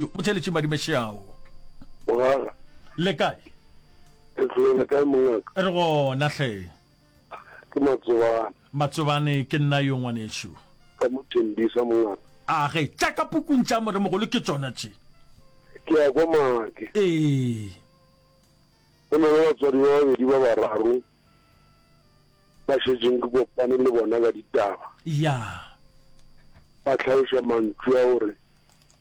O theletše madime šeao. Mogala. Le kae? Ke tlole le kae mongaka? Re gona hle. Ke Matsobane. Matsobane ke nna yo ngwanešu. Ka mo Tembisa mongaka. A ge tša ka pukung tša moremogolo ke tšona tše. Ke ya kwa Maake. Ee. Go na le batswadi ba babedi ba bararo ba šetšeng ke kopane le bona ka ditaba. Ya. Ba tlhaloša mantšu a gore.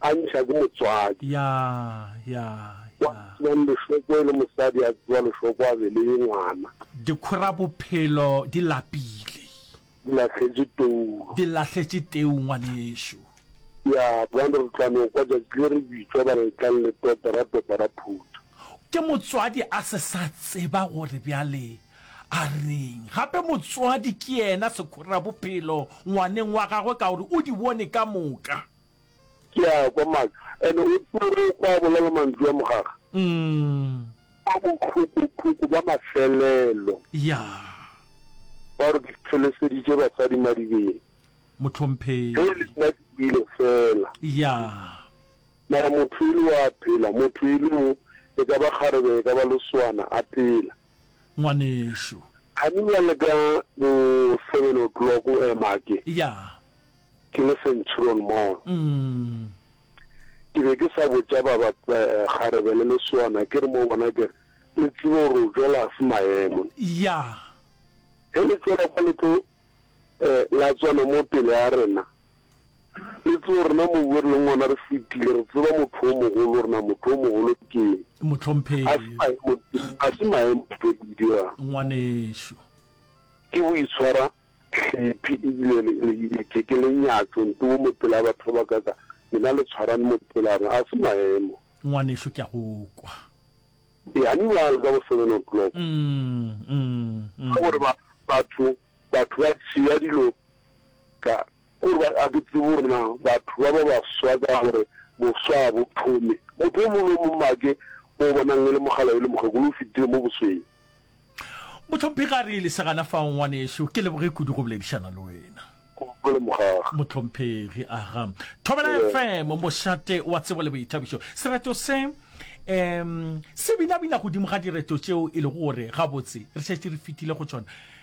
A ntšha ke motswadi. Ya, ya, Wa ya. tsebang lešoko e le mosadi a tseba lešoko a beleye ngwana. Dikhora bophelo di lapile. Di lahletše tou. Di lahletše teu ngwanešu. Ya, bjang re tla no kwa tšatši le re bitšwa ba re tlang le topa ra topa ra phutha. Ke motswadi a se sa tseba gore bjale a reng. Gape motswadi ke yena sekhora bophelo ngwaneng wa gagwe ka gore o di bone ka moka. Ke a kwa maaka. Ene o tsere kwa bolala mantšu a mogaga. Umm. Kwa bohloko-hloko ba mafelelo. Yaa. Ba re ke feleseditše basadi madibeng. Mohlomphegi. Ge e le nna ke kwele fela. Yaa. Mara motho e le o a phela, motho e le o, e ka ba kgarebe e ka ba loswana, a phela. Ngwanešu. Kgani bjale ka bo seven o'clock o ema ke. Yaa. Ke le Centurion Mall. Ke be ke sa botša ba ba kgarebe le leswana, ke re mo bona ke re, Le tsebe gore o tšwela se maemo. Yeah. Ge le tšwela kwa le tlo la tswana mo pele ga rena, le tsebe rena mobu o re leng gona re fetile, re tseba motho o mogolo gore na motho o mogolo ke eng. Mohlomphegi. Ga se maemo ntho e ke di dirang. Ngwanešu. Ke boitshwara Hlephi ebile le le ile ke ke le nyatšo nto wo mo pela batho ba bakaka lena le tshwarane mo pelana a se maemo. Ngwanešu ke a go kwa. E honey ba le ka bo seven o'clock. Umm umm umm. Ka gore ba batho batho ba tšea dilo ka Ke gore ba a ke tsebe gore na batho ba ba baswa ka gore boswa ga bo thome. Motho yo mongwe le yo mongwe a ke o bonang e le mogala yo le mokgekolo o fetile mo bosweng. Mohlomphegi a re, Lesegana fao, ngwanešu, ke leboge kudu go boledišana le wena. Gopole mogag. Mohlomphegi, Aga. Thobela FM, mošate wa tsebo le boithabišo. Sereto se um se binabina godimo ga direto tšeo e lego gore gabotse re šetše re fetile go tšona.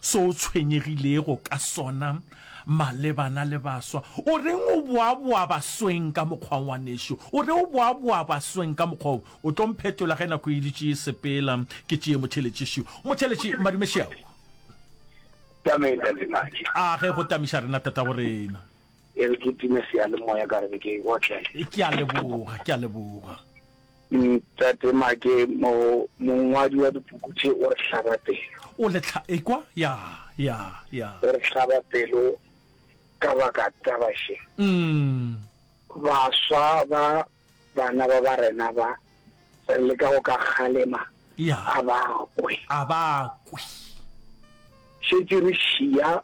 Se o tshwenyegilego ka sona malebana le baswa, o reng o boaboa basweng ka mokgwa wo? Ngwanešu, o re o boaboa basweng ka mokgwa wo. O tlo mphetola ge nako e dutše e sepela, ke tšee motheletši šo. Motheletši, madume šeao. Tame, Tate Matšhe. A ge go tamiša rena, tatago rena. E re ke time seyalemoya ka re ke otlele. Ke a leboga, ke a leboga. Ntate Make, mo, mongwadi wa dipuku tše o re hlaba pelo. O le tlha, ekwa? Ya, ya, ya. O re hlaba pelo ka baka taba še. Umm. Baswa ba bana ba ba rena ba, re leka go ka kgalema, Ya. a ba kwe. A ba kwe. Šetše re šiya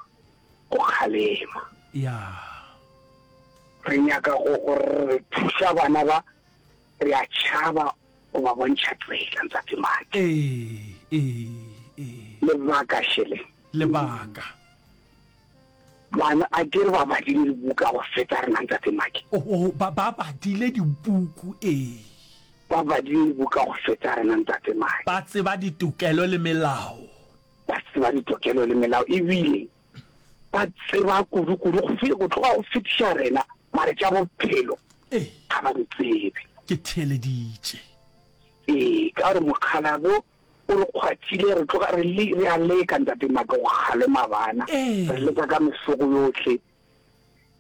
go kgalema. Ya. Re nyaka go, go re thuša bana ba. Re a tšhaba go ba bontšha tsela, Ntsatsi Maki. Ee, ee, ee. Lebaka, Shirley. Lebaka. Bana, a ke re ba badile dibuku ka go feta rena, Ntsatsi Maki. Oh, oh, ba, ba badile dibuku, ee. Ba badile dibuku ka go feta rena, Ntsatsi Maki. Ba tseba ditokelo le melao. Ba tseba ditokelo le melao, ebile. ba tseba kudukudu go fe go tloga go fetiša rena mare tša bophelo ga ba di tsebe ke theeleditše ee ka gore mokgalabo o re kgwathile re tloga re le re a leka ntate maka go kgalema bana re leka ka mesoko yotlhe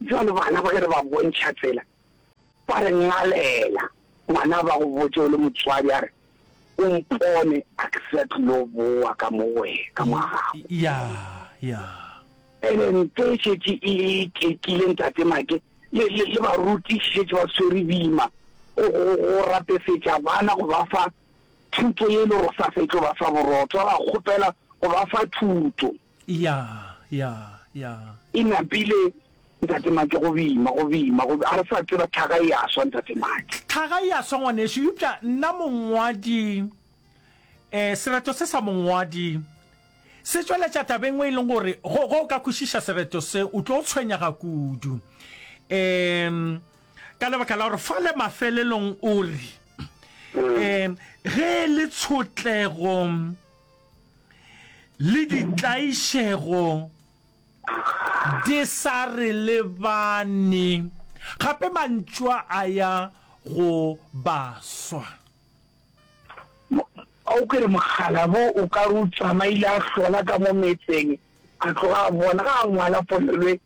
jalo bana ba ge re ba bontšha tsela Ba re ngalela. Ngwana a ba go botše o le motswadi a re, O mpone a ke sa tlilo bowa ka mo go wena, ka mo gago. Ya, ya. Pele ntwa e šetše e ikekile, Ntate Make le, le, le barutiši šetše ba swere boima go, go, go rapefetša bana go ba fa thuto ye e lego sa sa e tlo ba fa borotho. Ba ba kgopela go ba fa thuto. Ya, ya, ya. E napile, Ntate Maki, go bima, go bima, go bima. A re sa tseba, tlhaga e a swa, Ntate Maki. Tlhaga e a swa, ngwanešu. Eupša nna mongwadi, eh, sereto se sa mongwadi se tšweletša taba e nngwe e leng gore, go, go ka kwešiša sereto se, o tlo tshwenyega kudu. Eh, ka lebaka la gore fale mafelelong o re, eh, ge e le tshotlego, le ditlaišego di sa re lebane, gape mantšwa a ya go baswa. A o kere mokgalabo o ka re o tsamaile a hlola ka mo metseng, a tloga a bona, a ngwala polelo e,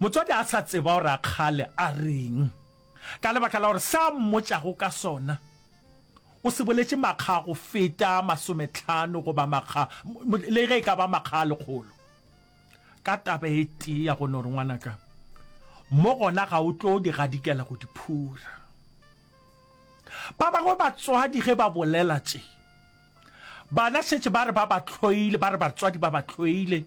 Motswadi a sa tseba gore a kgale a reng ka lebaka la gore se a mmotšago ka sona o se boletše makga a go feta masometlhano goba makga, le ge e ka ba makga a lekgolo, ka taba e tee ya go no re, Ngwanaka, mo gona ga o tlo di gadikela go di phura. Ba bangwe batswadi ge ba bolela tše Bana šetše ba re ba ba hloile, ba re batswadi ba ba hloile.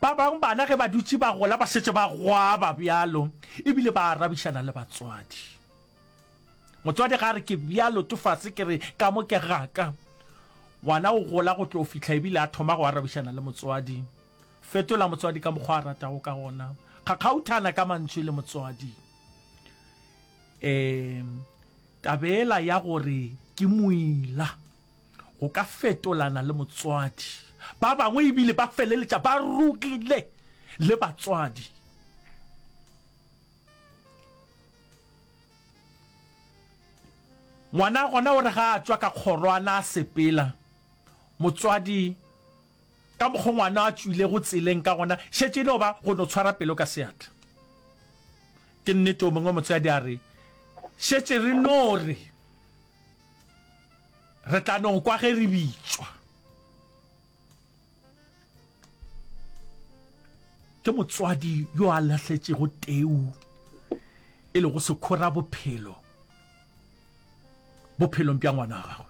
Ba bangwe bana ge ba dutše ba gola ba šetše ba gwaba bjalo ebile ba arabišana le batswadi. Motswadi ga a re ke bjalo tofase ke re ka mo ke gaka. Ngwana o gola go tlo fihla ebile a thoma go arabišana le motswadi. Fetola motswadi ka mokgwa a ratago ka gona. Kgakgauthana ka mantšu le motswadi. E. Tabela ya gore ke moila go ka fetolana le motswadi. Ba bangwe e bile ba feleletša ba rogile le batswadi. Ngwana gona o re ga a tšwa ka kgorwana a sepela, motswadi Ka mokgwa ngwana a tšwilego tseleng ka gona, šetše e no ba go no tshwara pelo ka seatla. Ke nnete, o mongwe motswadi a re, Šetše re no re re tla no kwa ge re bitšwa. Ke motswadi yo a lahletšego teu e lego sekhora bophelo bophelong bja ngwana wa gagwe.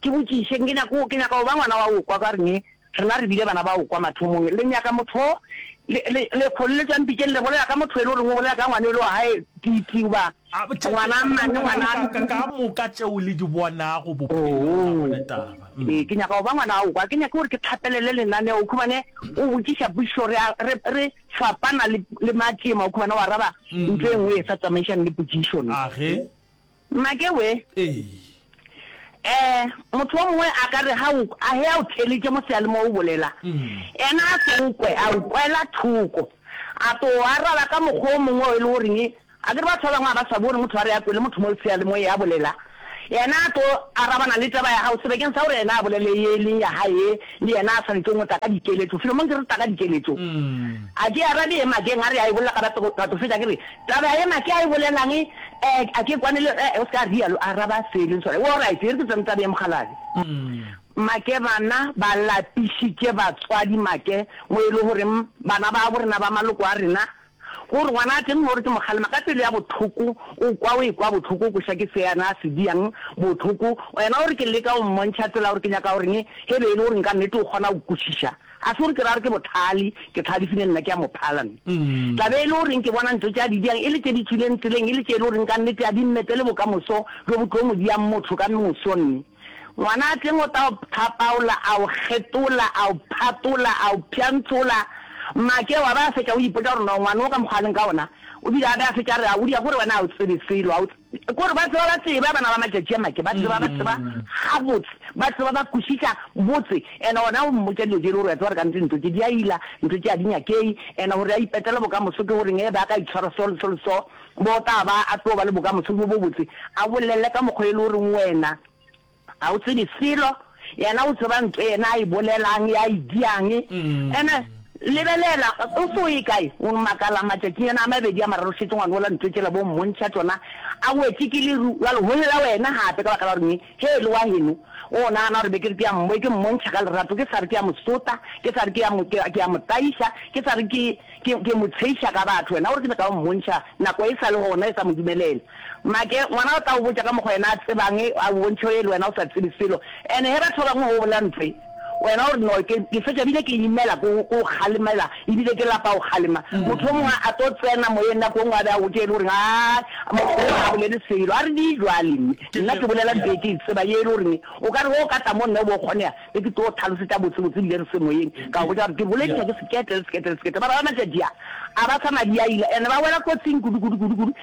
Ke botšišeng, ke nyaka, ke nyaka go ba ngwana wa go kwa, ka rene, rena re bile bana ba go kwa mathomong. Le nyaka motho o, le, le, le kgolletšwa mpitšeng, le bolela ka motho yo e le goreng o bolela ka ngwana yo e le wa gae, Titi, goba ngwana mang le ngwana a Ka, ka moka tšeo le di bonago bophelong, ga go na taba. Hm. Ee, ke nyaka go ba ngwana wa go kwa. Ke nyake gore ke tlhapelele lenaneo, o khumane, o botšiša pušo, re a, re, re fapana le, le matšema, o khumane, o araba ntho e nngwe e sa tsamaišane le pušišo. Age. Mmake we. Ee. Eh, motho o mongwe a ka re ha o a he a o theletše mo seale mo o bolela. Ena a se o kwe, a o kwela thoko. A to o araba ka mokgwa o mongwe o e le goreng a ke re batho ba bangwe a ba swabe gore motho a re a kwele motho mo seale mo ya bolela. Ena a to arabana le taba ya gago sebekeng sa gore ena a bolele ye e leng ya hae le ena a swanetše o mo taka dikeletšo. Filomong ke re taka dikeletšo. A ke arabe ye Makeng a re a e bolela ka batho fetša ke re Taba yena ke a e bolelang e a ke kwane le e o se ka rialo a araba se e leng sona. Wo right e re ke tsene tabeng ya mokgalabje. Make bana ba lapišitše batswadi make mo e le goreng bana ba bo rena ba maloko a rena go re ngwana a tle mme o re ke mokgalema ka pelo ya bohloko o kwa o e kwa bohloko o kweša ke se yena a se diang bohloko yena o re ke leka go mmontšha tsela gore ke nyaka goreng ge be e le gore nka nnete o kgona go kwešiša Ga se gore ke ra gore ke bothali, ke thali fine nna ke a mo phala nna. Tla be e le goreng ke bona ntho tše a di diang e le tše di tšwileng tseleng e le tše e le goreng ka nnete a di mmetele bokamoso bjo bo tlo mo diang motho ka moso nne. Ngwanaatleng o ta o pthapaola, a o kgetola, a o phatola, a o pšhantšhola. Mmake wa be a fetša o ipotša gore no ngwano o ka mokgwa a leng ka wona o bile a be a fetša a re a o dia gore wena a o tsebe selo, a o Ke gore ba tseba ba tseba bana ba matšatši a make, ba tseba ba tseba gabotse, ba tseba ba kwešiša botse, ene ona o mmotša dilo tše le gore wa tseba gore ka ntse ntlo tše di a ila, ntlo tše a di nyakei, ene gore a ipetele bokamoso ke goreng, ebe a ka itshwara so le so le so, bo tla ba a tlo ba le bokamoso bo bobotse, a bolele ka mokgwa e le goreng wena. Ga o tsebe selo, yena o tseba nto yena a e bolelang, ya e diang. Ene, lebelela, o se o ye kae, o makala matšatšinyana a mabedi a mararo šetše ngwana ola nto tšela bo mmontšha tšona, a wetše ke leru, bjale go lla wena gape ka baka la gore eng? Hee, le wa heno, o nagana gore be ke re ke ya mmo, ke mmontšha ka lerato, ke sa re ke ya mo sota, ke sa re ke ya mo, ke, ke ya mo tlaiša, ke sa re ke, ke, ke mo tsheiša ka batho, wena o re ke be ka o mmontšha, nako e sa le gona e sa mo dumelela. Make, Ngwana o tla go botša ka mokgwa yena a tsebang a go bontšhe e le wena o sa tsebe selo. And he batho ba bangwe go bolela ntho e wena o re no ke ke fetša bile ke imela ko go go kgalemela ebile ke lapa go kgalema. Motho o mongwe a tlo tsena moyeng nako e nngwe a be a gotše e le goreng aa motho o ga bolele selo. A re di jwale mme nna ke bolela ntho e ke e tsebang e le goreng o ka re ge o ka tla mo nna o bo kgonega be ke tlo tlhalosetša botsebotse ebile re se moyeng ka go botša gore ke bolediša ke seketle le seketle le seketle. Ba bangwe matšatši a a ba sa madi a ile and ba wela kotsing kudu kudu kudu kudu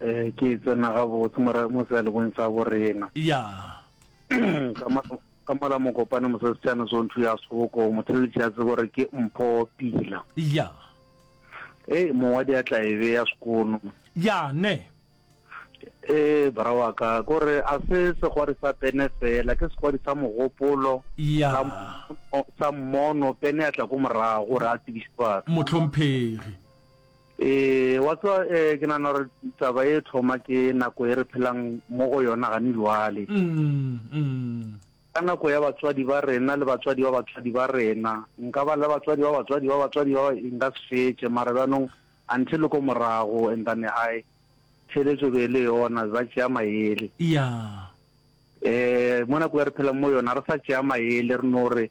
Ee, ke e tsena gabotse mora mo sealebong sa borena. Ya. Ka ma ka mola mokopane mosesitšana sonthu ya soko motheletši ya tsebo gore ke mpho pila. Ya. Ee, mongwadi ya tla e beya sekono. Ya, ne. Ee, bra wa ka ko re a se segwadi sa pene fela ke segwadi sa mogopolo Ya. sa mo- sa mmono pene ya tla ko morago gore a tsebiše batho. Mohlomphegi. Ee, wa tseba eh, ke nana gore taba e thoma ke nako e re phelang mo go yona gane lwale. Ka nako ya batswadi ba rena le batswadi ba batswadi ba rena, nka ba le batswadi ba batswadi ba batswadi ba e nka se fetše, mara bjanong until le ko morago and then hai theletso be le yona ba tšea maele. Yeah. Eh, mo nako e re phelang mo yona re sa tšea maele re no re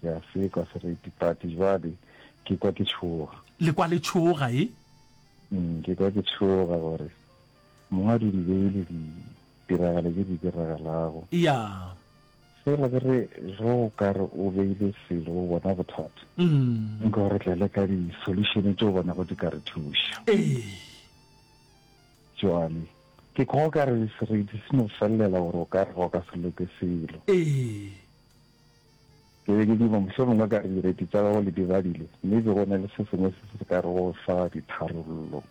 Ke a sekwa seretipati jwale, ke kwa ke tšhoga. Le kwa le tšhoga, e? Umm, ke kwa ke tšhoga gore Mongwe a di di beile ditiragalo tše di diragalago. Ya. Fela ke re ge o ka re o beile selo o bona bothata, nka o re tle le ka di-solution tše o bonago di ka re thuša. Ee. Jwale ke kwa o ka re sereti se no felelela gore o ka re ga o ka se loke selo. Ee. Ke be ke duma, mohlomongwe ka re direiti tša gago le di badile, mme be go na le se sengwe se se ka re go fa ditharollo,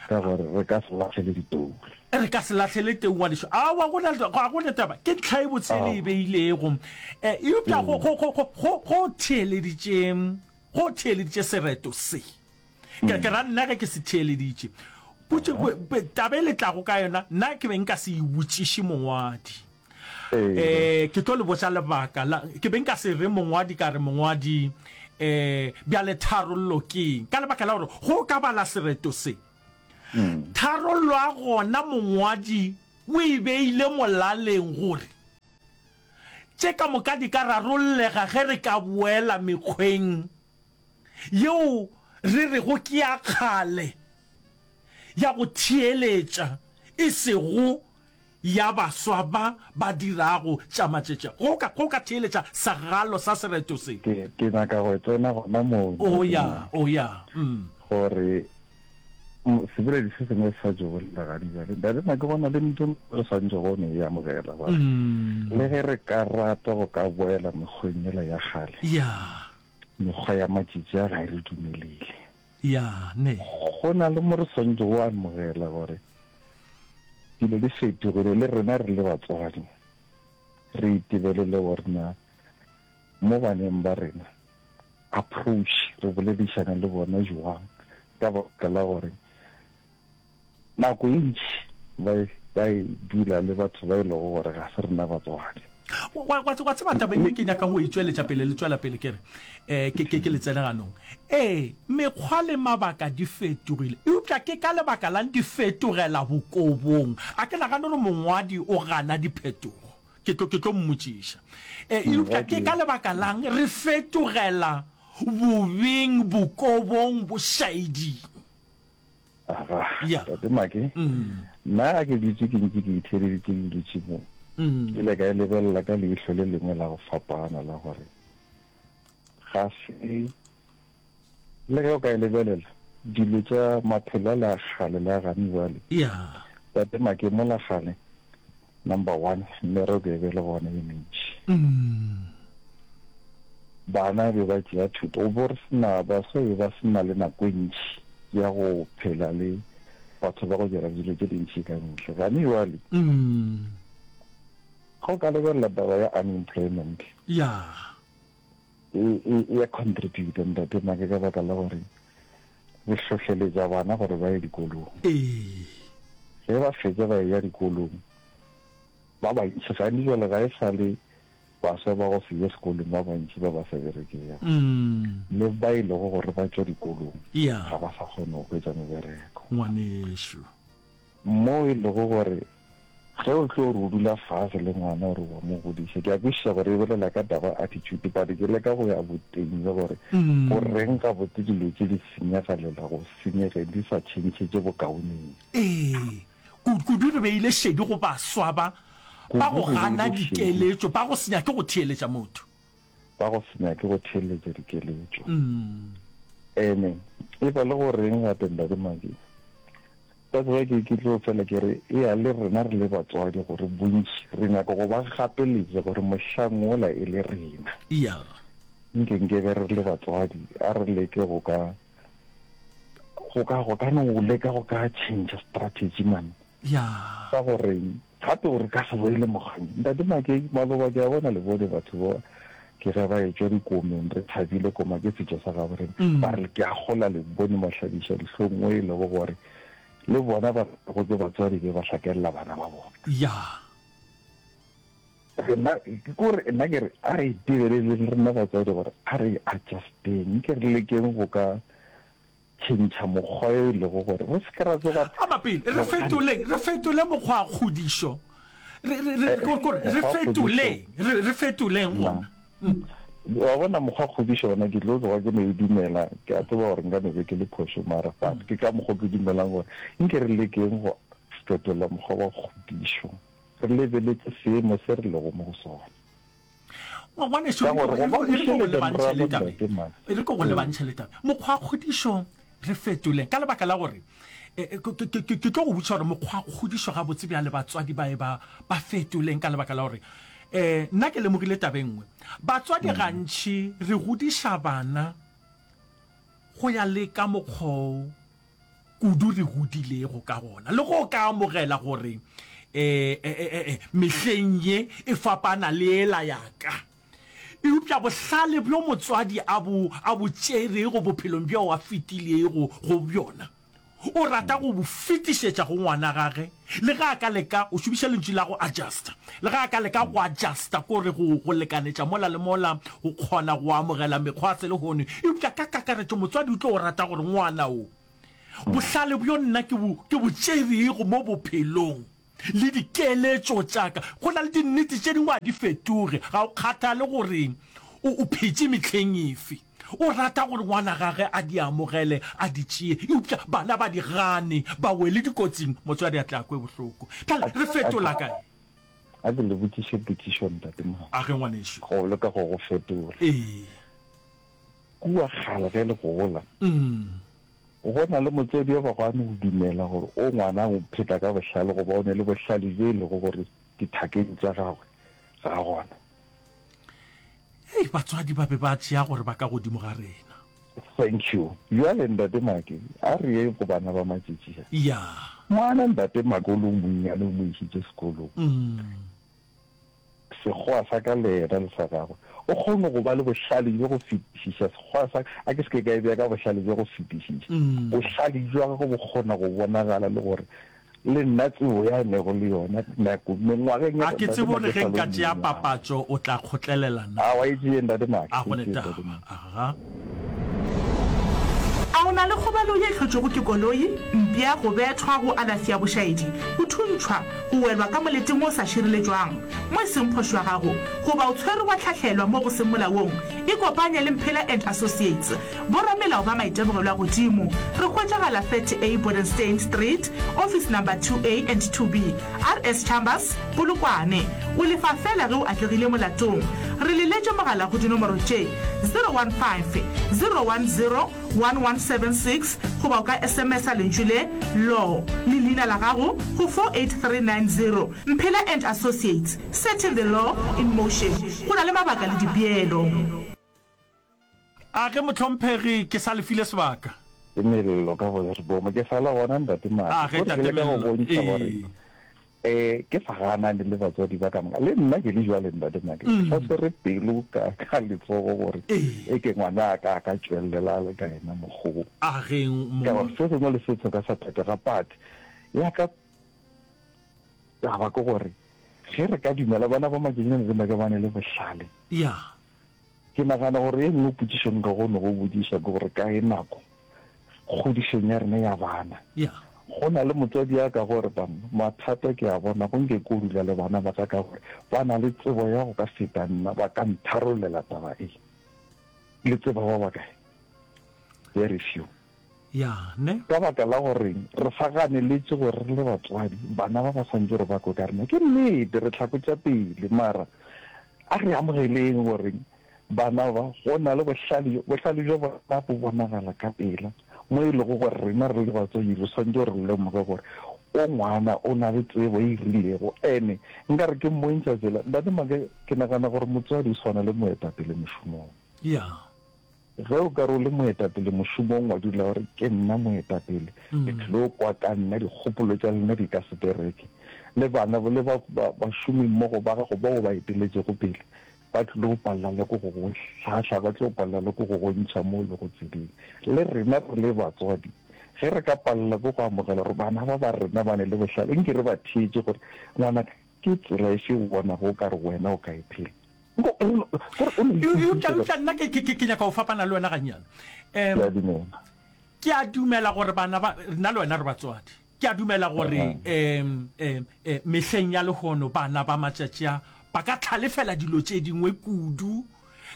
ka gore re ka se lahlele ditoule. Re ka se lahlele teu, ngwanešu. Aowa, go na, ga go na taba. Ke ntlha e botse e le e beilego. E, eupša go, go, go, go, go theeleditše, go theeleditše sereto se. Ke, ke ra nna ge ke se theeleditše. Potše, taba e le tlago ka yona, nna ke be nka se e botšiše mongwadi. Eh, ke tlo le botsa lebaka la ke be nka se re mongwadi ka re mongwadi eh bjale tharollo keng ka lebaka la gore go ka bala sereto se mm. tharollo a gona mongwadi o e beile molaleng gore tše ka moka di ka rarollega ge re ka boela mekgweng yeo re re go ke ya kgale ya go theeletša e sego ya baswa ba ba dirago tša matšetše go ka, go ka theeletša sagalo sa sereto se. Ke, ke nyaka go tsena gona moo, O nnete ya, na? o ya. Mm. Gore, m, seboledi se sengwe se sa tšo bolela gane bjale, bjale na ke bona le ntho e re swantšho go no e amogela, gore Mm. le ge re ka rata go ka boela mekgweng yela ya kgale, Ya. mekgwa ya matšetše a ga e re dumelele. Ya, ne. Go na le mo re swanetšego go amogela gore dilo di fetogile, le rena re le batswadi re itebelele gore na mo baneng ba rena approach re boledišana le bona jwang ka baka la gore Nako e ntši ba e, ba e dula le batho ba e lego gore ga se rena batswadi. Wa, wa, wa tseba taba ye ke nyaka go e tšweletša pele le tšwela pele ke re, eh, ke, ke, ke le tsene ganong. Ee, mekgwa le mabaka di fetogile. Eupša ke ka lebaka la'ng di fetogela bokobong? A ke nagane gore mongwadi o gana diphetogo. Ke tlo, ke tlo mmotšiša. E, Mm, eupša ke ka gotee. lebaka la'ng re fetogela bobeng, bokobong, bošaeding? aga tate make nna a ke dutse ke ntse ke itheleditse ke dutse mo ke le ka e lebelela ka leihlo le lengwe la go fapana la gore ga se le ge o ka e lebelela dilo tša maphelo a le a kgale le a gane jale tate make mo la gane Number one, merero be be le gona e mentši. Bana be ba tšea thuto go bo re sena baswa be ba sena le nako e ntši ya go phela le batho ba go dira dilo tše dintši ka mehla. Gane jwale ga o ka lebelela taba ya unemployment, e, e, e ya contributa ntate make ka baka la gore re hlohleletša bana gore ba ye dikolong ee ge ba fetsa ba ya dikolong ba bantši gane jale ga e sa le baswa ba go se ye sekolong ba bantši ba ba sa berekega mm. le ba e lego gore ba tšwa dikolong ga ba sa kgone go hwetsa mebereko ngwanešu Moo e lego gore ge o tlo re o dula fase le ngwana o re wa mo godiša, ke a kwešiša gore e bolela ka taba ya attitude, but ke leka go ya boteng le gore go reng gabotse dilo tše di senyegelela go senyegeng di sa tšhentšhetše bokaoneng. Ee, kudu re beile šedi go baswa ba ba go gana dikeletšo, ba go se nyake go theeletša motho. ba go se nyake go theeletša dikeletšo. Ene e ba le go reng gape Ntate Maki? Ka tseba ke ke tlo fela ke re e a le rena re le batswadi gore bontši re nyaka go ba gapeletša gore mohlang wola e le rena. Iya. Nke nke be re le batswadi a re leke go ka go ka go ka no leka go ka change strategy man. Bjang? Sa go reng? Gape gore ka se boele mogau. Ntate Makei, maloba ke a bona le bone batho ba ke ge ba etšwa dikomeng, re thabile koma ke setšo sa gabo rena. Ba re ke a gola le bone mahlabiša dihlong mo e lego gore le bona ba go ke batswadi be ba hlakelela bana ba bona. Ya. Rena ke gore nna ke re a re itebeeleleng rena batswadi gore a re adjusteng, ke re lekeng go ka Tšhentšha mokgwa yo e lego gore re se ke ra tsoga re. Ama pele. Re fetoleng. Re fetole mokgwakgodišo. Re, re, re, ko, ko, re fetoleng. Re, re fetoleng gona. Mm. Wa bona, mokgwakgodišo gona, ke tlo tloga ke no e dumela. Ke a tseba gore nka no be ke le phošo, mara but ke ka mokgwa o ke dumelang gore nke re lekeng go fetola mokgwa wa kgodišo, re lebeletse seemo se re lego mo go sona. wa ngwaneso Ka gore go ba re go tšwelele lebantšhe morago le tabe ntate man. e re ko go lebantšhe le tabe mokgwa wa kgodišo re fetoleng ka lebaka la gore eh, eh, ke- ke ke- ke- ke tlo go botša gore mokgwa wa kgodišo gabotse bja le batswadi ba e ba ba fetoleng ka lebaka la gore um nna ke lemogile tabeng nngwe batswadi gantšhi re godiša bana go ya le ka mokgwao kudu re godilego ka gona le go ka amogela gore um mehleng ye e fapana le ela yaka eupša bohlale bjo motswadi a bo a bo tšerego bophelong bjo a fetilego go bjona o rata go bo fetišetša go ngwana gage Le ge a ka leka, o šomiša lentšu la go adjusta, le ge a ka leka go adjusta, ko re go, go lekanetša mola le mola, go kgona go amogela mekgwa ya selehono, eupša ka kakaretšo motswadi o tlo go rata gore ngwana o. Bohlale bjo nna ke bo, ke bo tšerego mo bophelong, le dikeletšo tša ka, go na le dinnete tše dingwe a di fetoge, ga go kgathale gore o, o phetše mehleng efe. O rata gore ngwana gage a di amogele, a di tšee. Eupša bana ba di gane, ba wele dikotsing. Motswadi a tle a kwe bohloko. Bjale re fetola kae? A ke le botšiše potšišo, Ntate Mao. A ge, ngwanešu. Go leka go go fetola. Ee. Kua kgale ge le gola, go na le motswadi yo bago a no go dumela gore o ngwana o pheta ka bohlale goba o ne le bohlale bjo e lego gore dithakeng tša gagwe ga gona. hei batswadi ba be ba tšea gore ba ka godimo ga rena Thank you. Bjale ntate Make, a re yeng go bana ba matšetši a. ya Ngwana ntate Make o le o monnyane o mo išitše sekolong. mm. Sekgowa sa ka le yena le sa gagwe. O kgone go ba le bohlale bjo go fetišiša. Sekgowa sa ka, a ke se ke ka e bea ka bohlale bjo go fetišiša. Mm. Bohlale bja gagwe bo kgona go bonagala le gore Le nna tsebo ya nego le yona nako mengwageng ya. A ke tsebe o re ge nka tšea papatšo o tla kgotlelela na? A wa e tšee Ntate Max. A go ne taba. Aha. A o na le kgobalo ye hlotšwego ke koloi, mpša, go bethwa, go alafi ya bošaedi, go thuntšhwa, go welwa ka moleteng o sa šireletšwang mo e seng phošo ya gago, goba o tshwerwe wa hlahlelwa mo go seng molaong? Ikopanye le Mphela and Associates. Boramelao ba maitemogelo a godimo re hwetšagala 30 A Bodenstein Street, office number 2A and 2B, RS Chambers, Polokwane. O lefa feela ge o atlegile molatong. Re le letše mogala go dinomoro tše, 015 010 1176 goba o ka SMS-a lentšu le, Law, le leina la gago go 48390. Mphela and Associates, setting the law in motion. Go na le mabaka le dipeelo. A ge mohlomphegi ke sa le file sebaka. Mello ka go re boomo ke sa le gona Ntate Madi. A ge Tate Mello ee. E ke sa gana le le batswadi ba ka moka le nna ke le jwale Ntate Madi ke sa swere pelo ka ka letsogo gore e ke ngwana a ka a ka tšwellela a le ka yena mokgo wo. A ge mo. Ka gore se sengwe le se tshoka sa phetega but ya ka taba ke gore ge re ka dumela bana ba makenyana le make ba ne le bohlale. Ya. Ke nagana gore e nngwe potšišo nka kgono go botšiša ke gore ka e nako kgodišong ya rena ya bana, go na le motswadi ya ka gore ba mathata ke a bona go nke ko dula le bana ba ka ka gore ba na le tsebo ya go ka feta nna ba ka ntharollela taba e le tseba ba bakae very few. Yane. Ka baka la gore re sa ganeletše gore re le batswadi, bana ba ba swantše gore ba kwe ka rena. Ke nnete, re hlakotša pele, mara a re amogeleng gore bana ba, go na le bohlale, bohlale bja bona bo bonagala ka pela, mo e lego gore rena re le batswadi re swantše gore re lemoge gore o ngwana, o na le tsebo e rilego. Ene nka re ke mmontšha tsela. Ntate Maaka, ke nagana gore motswadi o swana le moetapele mošomong. Ya. Ge o ka re o le moetapele mošomong, wa dula o re, Ke nna moetapele. Le tlilo kwa ka nna, dikgopolo tša lena di ka se bereke. Le bana le ba, ba, bašomimmogo ba gago bao o ba eteletšego pele, ba tlilo go palela le ko go go hlahla, ba tlo palela le ko go go ntšha mo o lego tseleng. Le rena re le batswadi, ge re ka palela ke go amogela gore bana ba ba rena ba ne le bohlale, nke re ba theetše gore, Ngwanaka, Ke tsela efe o bonago o ka re wena o ka e phela? Eupša eupša nna ke ke ke ke nyaka go fapana le wena gannyane. Ke a dumela. Ke a dumela gore bana ba nna le wena re batswadi. Ke a dumela gore em em em mehleng ya lehono bana ba matšatši a ba ka tlhalefela dilo tše dingwe kudu.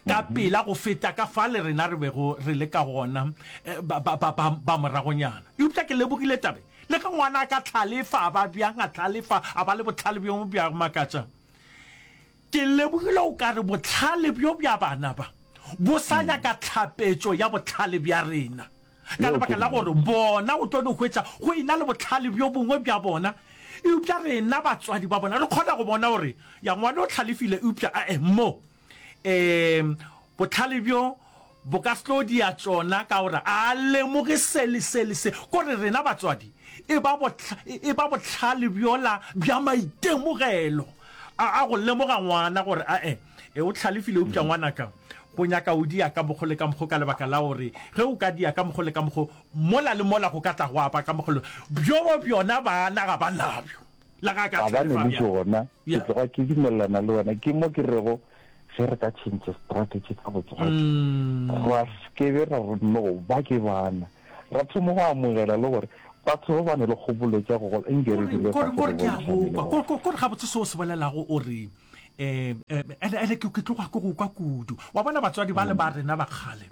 ka pela go feta ka fale rena re bego re le ka gona ba, ba, ba, ba, ba moragonyana. Eupša ke lebogile tabe, le ge ngwana a ka hlalefa a ba bjang, a hlalefa a ba le bohlale bjo bja go makatša. Ke lebogile o ka re bohlale bjo bja bana ba bo sa nyaka tlhapetšo ya bohlale bja rena, ka lebaka la gore bona o tlo no hwetša go ena le bohlale bjo bongwe bja bona, eupša rena batswadi ba bona re kgona go bona gore ya ngwana o hlalefile eupša a-e mo. Ee, bohlale bjo bo ka se tlo dia tšona ka gore a lemoge se le se le se, gore rena batswadi e ba e ba bohlale bjola bja maitemogelo a a go lemoga ngwana gore a e e o tlhalefile upša ngwanaka go nyaka o dia ka mokgo le ka mokgo ka lebaka la gore ge o ka dia ka mokgo le ka mokgo mola le mola go ka tla go apa ka mokgolo bjo bjona bana ga ba nabjo. Ga ba neleše gona, ke tloga ke dumelelana le wena. Ke mo ke rego ge re ka tšhentšhe strategy ka botswadi, ra sekebe ra re no ba ke bana, ra thomo go amogela le gore batho ba ba ne le kgopolo tša go gola nke re dire fase re bontšhane. Kore gabotse se o se bolelago o re um ene ke tloga ke go kwa kudu. Wa bona batswadi bale ba rena ba kgale,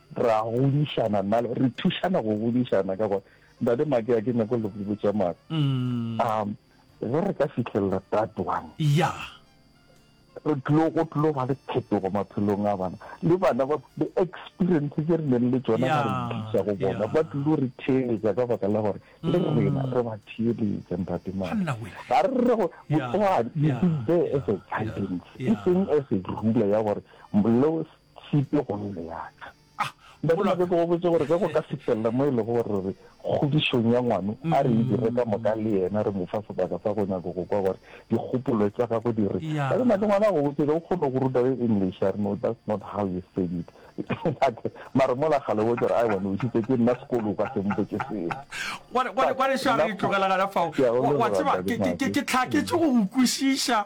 Ra godišana nna le, re thušana go godišana ka gore Ntate Make a ke nyako le go botša mare. Mm. Um, ge re ka fitlhelela tatoang. Ya. Re tlo go tlo ba le phetogo maphelong a bana. Le bana ba le experience tse re neng le tsona ga re thuša go bona. Ba tlo re theeletsa ka baka la gore le mm. rena re ba theeletsa Ntate Make. Ga re re go botswa you be there as a guidance. E seng as a ruler ya gore lo Sepe go nne ya ka. Ah, mogolo wa ka. Ke go botse gore ge go ka fihlella mo e lego gore re re kgodišong ya ngwano, a re e dire ka moka le yena, re mo fa sebaka sa go nyaka go kwa gore dikgopolo tša gagwe di reng. Ka dinako ngwana a go botše, ge o kgone go ruta ge English, a re, No, that's not how you said it. Mara mola kgale o botša gore, Aewa, ne o šitše ke nna sekolo, o ka se mpotše seo. Gwa re, gwa re, gwa re, Shari, tlogela gona fao. Wa tseba, ke, ke, ke, ke tlhaketše go go kwešiša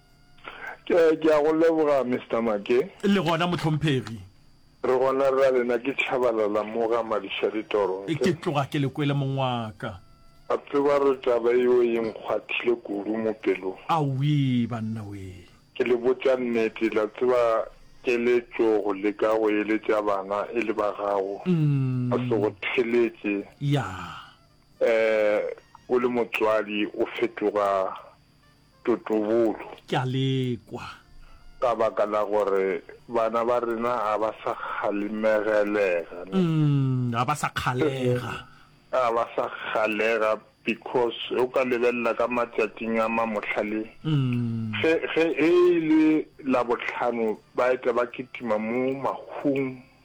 Ke, ke a go leboga, Mister Mackay. Le gona, mohlomphegi. Re gona ra lena, ke Tshabalala mo ga Madišaditoro, nke. Ke tloga ke le kwele, mong wa ka. A tseba gore taba yeo e nkgwathile kudu mo pelong. Awii, banna wee! Ke le botša nnete, la tseba, ke le tšo go leka go eletša bana e le ba gago, ba se go theletše. Ya. Eh, o le motswadi, o fetoga. totobolo. Ke a le kwa. Ka baka la gore bana ba rena ga ba sa kgalemegelega. Umm, ga ba sa kgalega. Ga ba sa kgalega because o ka lebelela ka matšatšing a ma mohlale. Umm. Ge, ge e le Labohlano ba eta ba kitima mo mahung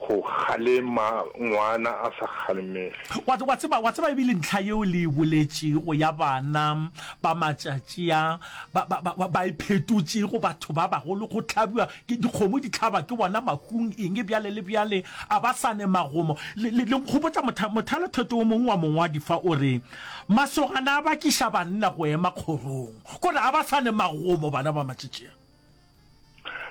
Go kgalema ngwana a sa kgalemege. Wa, wa tseba, wa tseba e bile ntlha yeo le e boletšego ya bana ba matšatši a, ba, ba, ba, ba, ba iphetotšego batho ba bagolo, go hlabiwa ke, dikgomo di hlaba ke bona mahung, eng, bjale le bjale, a ba sa ne magomo. Le, le, le nkgopotša motha, mothalotheto o mongwe wa mongwadi fa, o re, Masogana a bakiša banna go ema kgorong, kore a ba sa ne magomo, bana ba matšatši a.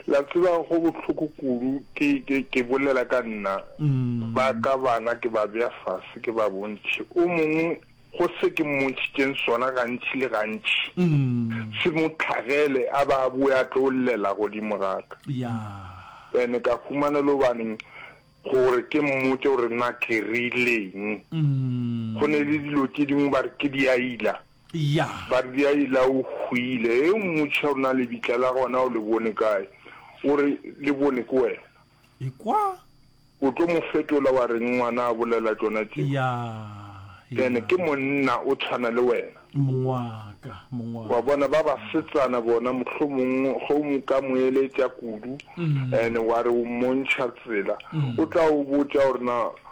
la tseba go bohloko kudu ke ke ke bolela ka nna mm. ba ka bana ke ba bea fase ke ba bontšhe o mongwe go se ke mmontšhitšeng sona gantši le gantši mm. se mo tlhagele a ba a boe a tlo llela godimo gaka ene ka humana le obaneng gore ke mmotse gore na ke rileng mm. go ne le dilo tse dingwe ba re ke diaila Ya. Ba re, Di a ila, o hwile. Ge o mmotšiša gore na lebitla la gona o le bone kae, o re, Le bone ke wena. Ekwa. O tlo mo fetola wa reng ngwana a bolela tšona tšeo? Ya, ya. Ene ke monna, o tshwana le wena. Mong wa ka, mong wa ka. Wa bona, ba basetsana bona, mohlomong ge o mo ka mo eletša kudu, ene wa re o mmontšha tsela, o tla o botša gore na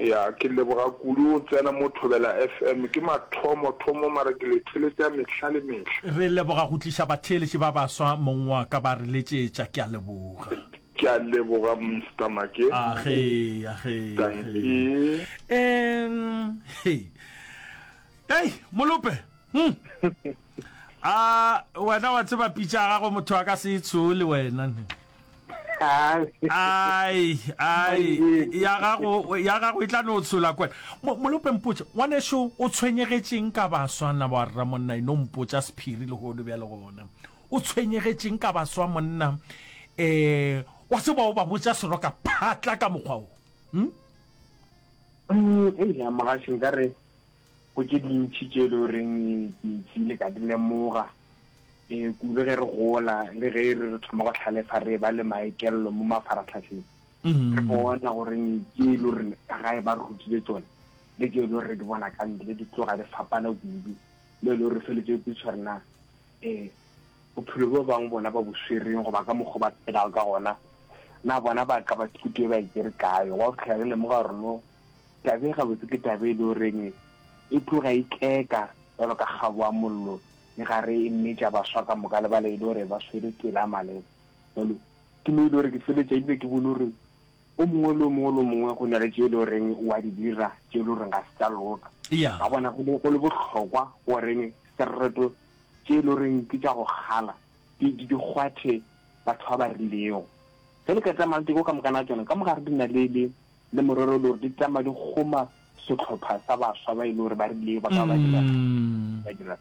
Eya ke leboga kudu o tsena mo Thobela FM ke mathomo thomo mara ke le theletša mehla le mehla. Re leboga go tliša batheeletši ba baswa mong wa ka ba re letšetša ke a leboga. Ke a leboga Mister Make. Age age age. Em hei. Ei molope. Hum. a wena wa tseba pitša ya gagwe motho a ka se e tshoe le wena ne ai ai ya gago ya gago e tla no tshola kwena Mo- molope mpotša ngwaneso o tshwenyegetšeng ka baswa na wa rra monna e no mpotša sephiri lehodu bjale gona o tshwenyegetšeng ka baswa monna eh wa tseba o ba botša seroka phatla ka mokgwa o hm? Mm, ei, ya mogaši nka re Go tše dintši tše e le goreng ke nkile ka di lemoga kudu ge re gola le ge e re re thoma go hlalefa re ba le maekelelo mo mafaratlhatlheng. Re bona gore tše e le gore ka gae ba re rutile tsone le tše e le gore re di bona ka ntle di tloga di fapana kudu, mo e le gore re feletse re kwešiša gore na bophelo bjo bangwe bona ba bo swereng goba ka mokgwa o ba phelago ka gona na bona ba ka ba thuto e ba e tšere kae. Wa go fitlhela re lemoga gore no Taba e gabotse ke taba e le goreng e tloga e tleka jalo ka kgabo ya mollo e gare e mmetša baswa ka moka le bale e le gore ba swere tsela ya maleba. Jalo ke mo e le gore ke feletša ebile ke bone gore o mongwe le o mongwe le o mongwe go na le tše e le goreng o a di dira tše e le goreng ga se tša loka. Ka bona go le go le bohlokwa goreng sereto tše e le goreng ke tša go kgala di di kgwathe batho ba ba rilego. Ge le ka tsamaya le teko ka mokana tšona ka mogare di na le le Le morero le gore di tama di kgoma setlhopha sa baswa ba e le gore ba rile ba ka ba dira ba dira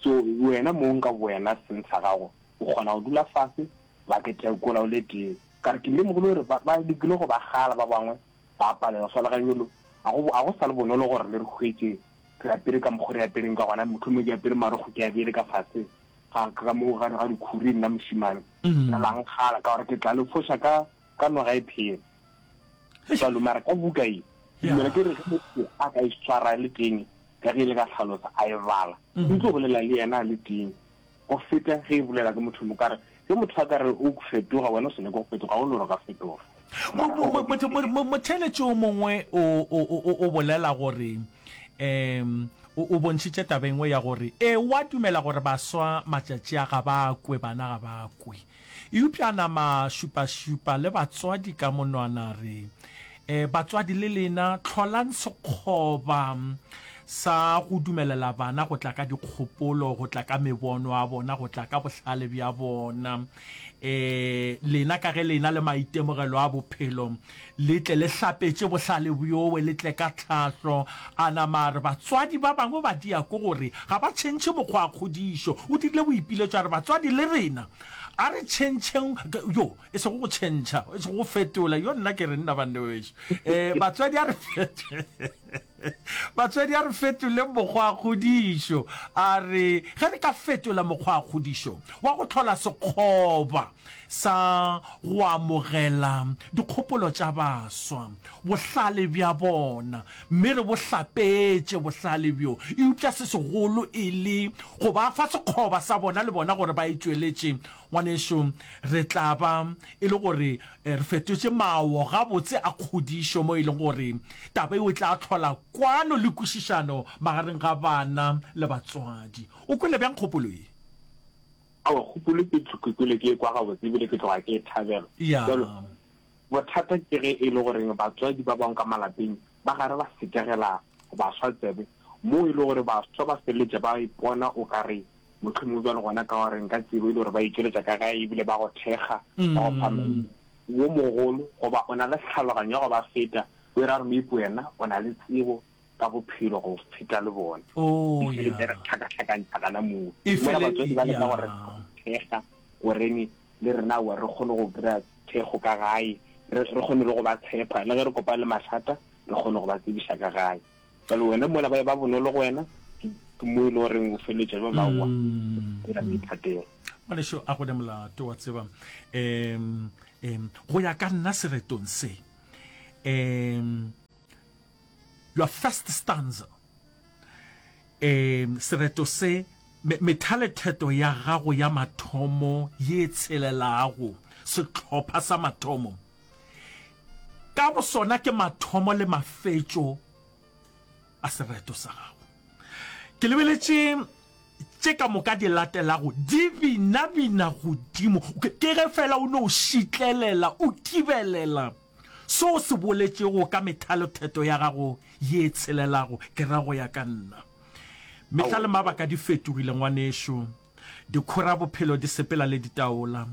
so wena mong ka wena seng sa gago o kgona go dula fase ba ke tekola o le tee ka re ke lemogile gore ba ba lekile go ba gala ba bangwe ba palela fela ga yolo a go a go sa le bonolo gore le re hwetse re apere ka mokgwa re apereng ka gona motho mo ke apere maro go ke abele ka fase ga ka mo ga ga dikhuri nna mosimane nna lang gala ka gore ke tla le fosha ka ka noga e phela Jalo, mara ka buka ye, ke dumela ke re ge motho a ka e swara le teng, ka ge le ka hlalosa, a e bala, e tlo bolela le yena a le teng, go feta ge e bolela ke motho mo kare. Ge motho a ka re o fetoga, wena o sa nyake go fetoga, ga o no re o ka fetoga. Mo, motheeletši o mongwe o, o, o, o bolela gore, um o, o bontšhitše taba e nngwe ya gore, ewa dumela gore baswa matšatši a ga ba kwe, bana ga ba kwe. Eupša a nama a šupašupa le batswadi ka monwana a re, E, batswadi le lena, hlolang sekgoba sa go dumelela bana go tla ka dikgopolo, go tla ka mebono ya bona, go tla ka bohlale bja bona. E, lena ka ge lena le maitemogelo a bophelo, Le tle le hlapetše bohlale bjowe, le tle ka tlhahlo. A nama a re, Batswadi ba bangwe ba diako gore ga ba tšhentšhe mokgwa wa kgodišo. O dirile boipiletšo a re, Batswadi le rena, a re tšhentšheng, yo, e sego go tšhentšha, e sego go fetola, yo, nna ke re, nna banna ba bešo, ee, batswadi a re fetola. Batswadi, a re fetoleng mokgwakgodišo. A re ge re ka fetola mokgwakgodišo wa go hlola sekgoba sa go amogela dikgopolo tša baswa, bohlale bja bona, mme re bo hlapetše bohlale bjo eupša se segolo e le go ba fa sekgoba sa bona le bona gore ba e tšweletše, ngwanešu, re tla ba e le gore Re fetotše mawo gabotse a kgodišo mo e lego gore taba yeo e tla hlola kwano le kwešišano magareng ga bana le batswadi. O kwele bjang kgopolo ye? Aowa, kgopolo ke tlhokekile ke e kwa gabotse e bile ke tloga ke e thabela. Bjalo, bothata ke ge e le gore batswadi ba bangwe ka malapeng Ba gare ba sekegela baswa tsebe, moo e le gore baswa ba feleletša ba ipona o ka re mohlomongwe bjale gona ka gore nka tsebo e le gore ba itšweletša ka gae e bile ba go thekga, ba go fa maina. Wo mogolo goba o na le tlhaloganyo ya go ba feta, o e ra gore maybe wena o na le tsebo ka bophelo go feta le bona. E feleletša e re tlhakatlhakantšha gana moo. Mola batswadi ba leka go re thekga gore le rena aowa re kgone go kry-a thekgo ka gae, re, re kgone le go ba tshepa, le ge re kopana le mathata, re kgone go ba tsebiša ka gae. Bjale wena mola ba e ba bonolo go wena, ke, ke mo e le goreng o feleletša ba ba wa, dira boithatelo. Ngwanešu a go ne molato, wa tseba. Um, um, go ya ka nna seretong se, um, your first stanza Ee, sereto se, me, methaletheto ya gago ya mathomo ye e tshelelago, sehlopha sa mathomo, ka bosona ke mathomo le mafetšo a sereto sa gago. Ke lebeletše tše ka moka di latelago di binabina godimo, ke ge fela o no šitlelela, o kibelela. Se o se boletšego ka methalo theto ya gago ye e tshelelago, ke ra go ya ka nna. Mehla le mabaka di fetogile, ngwanešu. Dikhora bophelo di sepela le ditaola.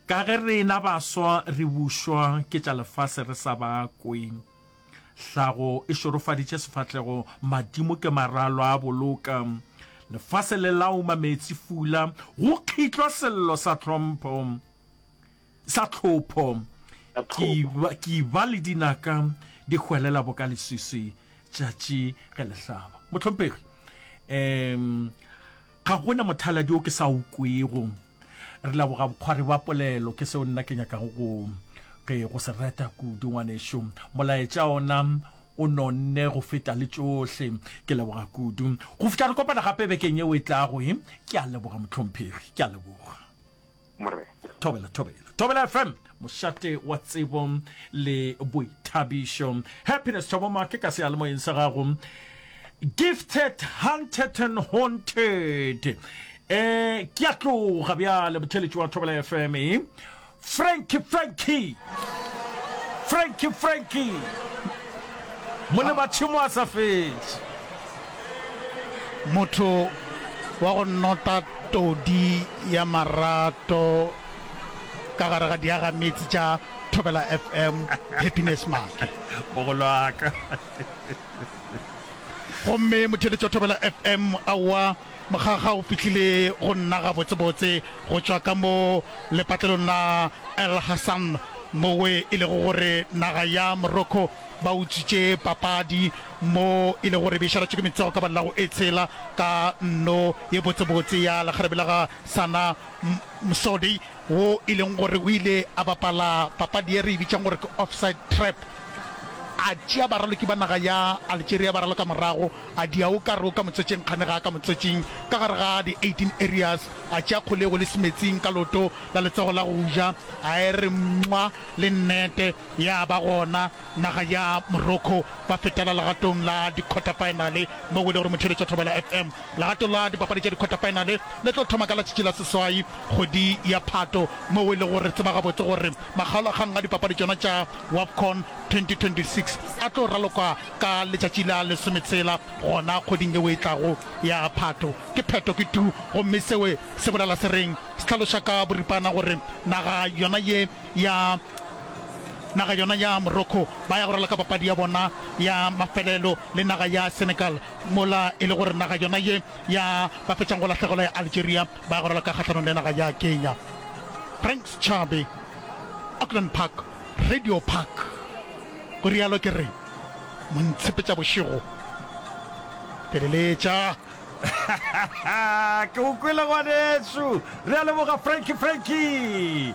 Ka ge rena baswa re bušwa ke tša lefase re sa ba kwe. Hlago e šorofaditše sefahlego, madimo ke maralo a boloka. Lefase le lauma meetsifula, go kgitlwa sello sa tlhompho. Sa tlhopho, ke ba le dinaka di hwelela boka leswiswi tšatši ge le hlaba. Mohlomphegi, um ga gona mothaladi o ke sa o kwego. Re leboga bokgwari bja polelo, ke seo nna ke nyakago go ke go se reta kudu. Ngwanešu, molaetša ona o nonne go feta le tšohle. Ke leboga kudu. Go fihla re kopana gape bekeng yeo e tlago, ke a leboga, Mohlomphegi, ke a leboga. Morena. Thobela, thobela, thobela FM, mošate wa tsebo le boithabišo. Happiness Thobo Make ka sealemoyeng sa gago. Gifted, hunted and haunted. Eh, ke a tloga bjale motheletši wa Thobela FM. Eh? Frankie, Frankie. Frankie, Frankie. Mone ba tšhimo a sa fetše. Motho wa go nota todi ya marato ka gare ga diagameetse tša Thobela FM, Happiness Maake. Mogolo wa ka. Gomme motheeletši wa Thobela FM, aowa, mokgakga o fihlile go nna gabotsebotse go tšwa ka mo lepatlelong la El Hassan, moo e lego gore naga ya Morocco ba utswitše papadi Mo e lego gore be e šaratšwe ke metsogo ka ba la go e tshela ka nno ye botsebotse ya lekgarebe la ga Sana Msodi, wo e leng gore o ile a bapala papadi ye re e bitšang gore ke offside trap, a tšea baraloki ba naga ya Algeria bararo ka morago, a dia o ka re o ka motswetšeng kgane ga a ka motswetšeng, ka gare ga di 18 areas, a tšea kgolego le semetsing ka leoto la letsogo la go ja, a e re mwa le nnete, ya ba gona Naga ya Morocco ba fetela legatong la dikhwatafaenale mo go ile gore motheeletši wa Thobela FM. Legato la dipapadi tša dikhwatafaenale le tlo thoma ka latšatši la seswai kgwedi ya Phato mo go ile gore re tseba gabotse gore makgaolakgang a dipapadi tšona tša Wafcon 2026 a tlo ralokwa ka letšatši la lesometshela gona kgweding yeo e tlago ya Phato. Ke pheto ke tu gomme seo se bolela se reng? Se hlaloša ka boripana gore naga yona ye ya naga yona ya Morocco ba ya go ralaka papadi ya bona ya mafelelo le naga ya Senegal mola e le gore naga yona ye ya ba fetšang go lahlegela ya Algeria ba ya go ralaka kgahlanong le naga ya Kenya. Frank Schabe, Auckland Park, Radio Park, go rialo ke re mo ntshepetša bošego feleletša. ke o kwele ngwaneso re a leboga franki franki